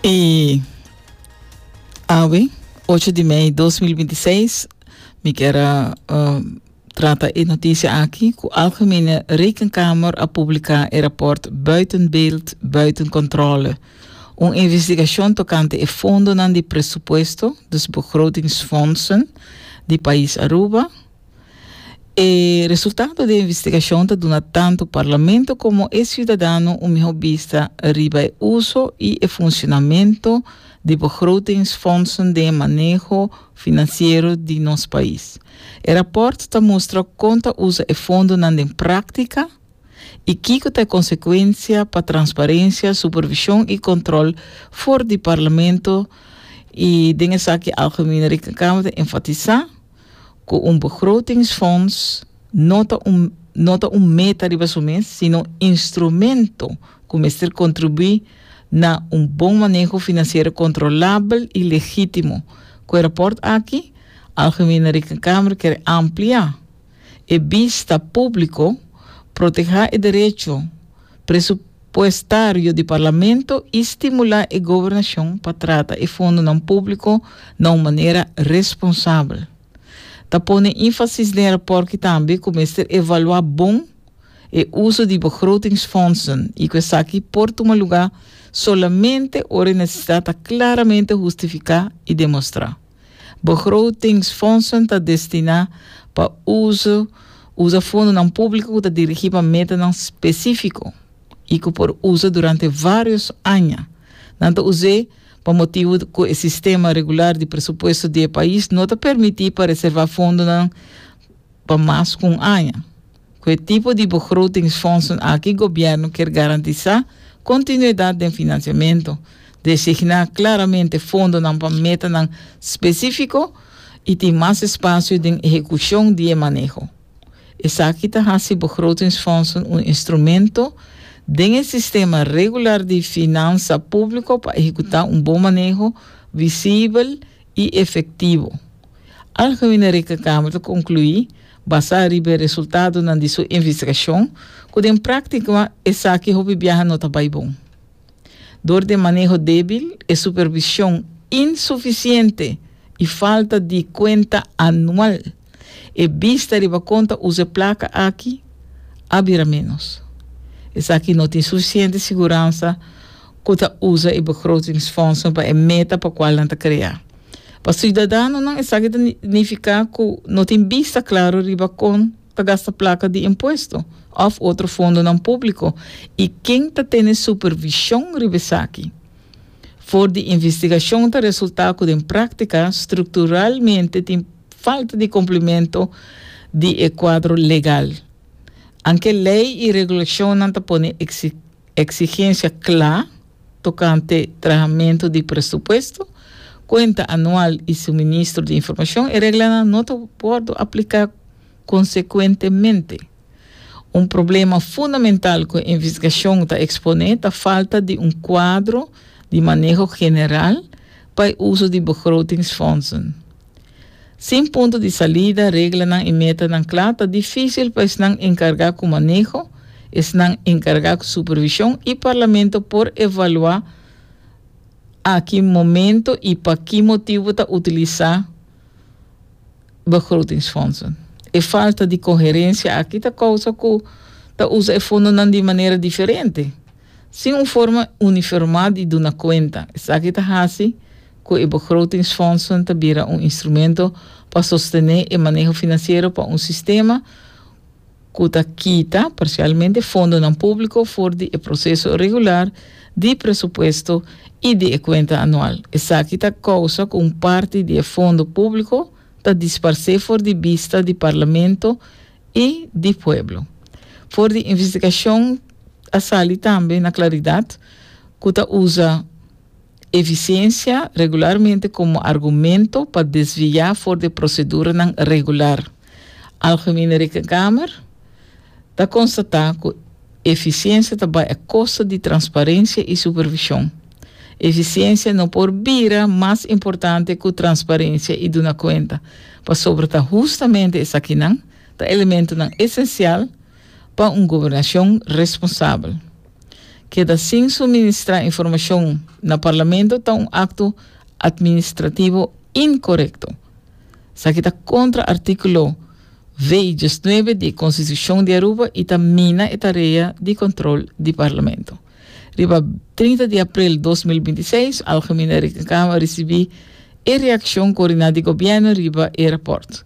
E awe, ocho di mei dos mil binti seis, mi kera uh, trata e noticia aki, ku Algemene Rekenkamer a publika e rapport Buiten Beeld, Buiten Controle, un investigashon tokante e fondonan di presupuesto, dus begrotingsfondsen, di pais Aruba, E resultado di e investigashon ta duna tantu Parlamento komo e siudadano un mihó bista riba e uso i e funshonamentu di begrotingsfondsen den e maneho finansiero di nos pais. E rapòrt ta mustra kon ta usa e fondonan den práktika i kiko ta e konsekuensia pa transparensia, supervishon i kòntròl for di Parlamento i den esaki Algemene Rekenkamer ta enfatisá, cu un begrotingsfonds no ta un no ta un meta riba su mes, sino instrumento cu mester contribui na un bon maneho financiero controlabel y legitimo. Cu e rapport aki, Algemene Rekenkamer ker amplia e bista publico, proteha e derecho presu, puestario di Parlamento i stimulá e gobernashon pa trata e fondonan públiko na un manera responsabel. Ta pone énfasis den rapòrt ki tambe ku mester evaluá bon e uso di begrotingsfondsen i ku esaki por tuma lugá solamente ora e nesesidat ta klaramente hustifiká i demostrá. Begrotingsfondsen ta destiná pa uso usa fondonan públiko ku ta dirigí pa metanan spesífiko i ku por usa durante vários aña. Nan ta us'é pa motibu ku e sistema regular di presupuesto di e pais no ta permití pa reservá fondonan pa mas ku un aña. Ku e tipo di begrotingsfondsen aki gobièrnu kier garantisá kontinuidat den finansiamentu, designá klaramente fondonan pa metanan spesífiko i tin mas espasio den ehekushon di e maneho. Esaki ta hasi begrotingsfondsen un instrumento den e sistema regular di finansa públiko pa ehekutá un bon maneho, visibel i efektivo. Algemene Rekenkamer ta konkluí Basá riba e resultadonan di su investigashon, ku den práktiko esaki hopi biaha no ta bai bon. Dor den maneho débil, e supervishon insufisiente i falta di kuenta anual, e bista riba kon ta usa e plaka aki a bira ménos. Esaki no tin sufisiente siguransa. ku ta usa e begrotingsfondsen pa e meta pa kual nan ta krea. Pa siudadanonan esaki ta nifiká ku no tin bista klaru riba kon ta gasta plaka di impuesto òf otro fondonan públiko i ken ta tene supervishon riba esaki. For di investigashon ta resultá ku den práktika strukturalmente tin falta di kumplimentu di e kuadro legal. Anke lei i regulashonnan ta pone eksikshon. Eksigensia kla tokante trahamentu di presupuesto, kuenta anual i suministro di informashon, e reglanan no ta wòrdu apliká konsekuentemente. Un problema fundamental ku e investigashon ta eksponé ta falta di un kuadro di maneho general pa e uso di begrotingsfondsen. Sin punto di salida, reglanan i metanan kla, ta difísil pa esnan enkargá ku maneho, esnan enkargá ku supervishon i parlamento por evaluá a ki momento i pa ki motibu ta utilisá begrotingsfondsen. E falta di koherensia aki ta kousa ku ta usa e fondonan di manera diferente. Sin un forma uniformá di duna kuenta. Esaki ta hasi ku e begrotingsfondsen ta bira un instrumento pa sostené e maneho finansiero pa un sistema ku ta kita, parsialmente, fondonan públiko for di e proseso regular di presupuesto i di e kuenta anual. Esaki ta kousa ku un parti di e fondo públiko ta disparsé for di bista di Parlamento i di pueblo. For di investigashon a sali tambe na klaridat ku ta usa efisiensia regularmente komo argumento pa desviá for di proseduranan regular. Algemene Rekenkamer ta konstatá ku. Efisiensia ta bai a kosta di transparensia i supervishon. Efisiensia no por bira mas importante ku transparensia i duna kuenta, pasobra ta hustamente esakinan ta elementonan esensial pa un gobernashon responsabel. Keda sin suministrá informashon na Parlamento ta un akto atministrativo inkorekto. Esaki ta kontra artíkulo. Vei diesnuebe di Konstitushon di Aruba i ta mina e tarea di kontrol di Parlamento. Riba trinta di aprel dos mil binti seis, Algemene Rekenkamer risibí e reakshon koriná di Gobièrnu riba e rapòrt.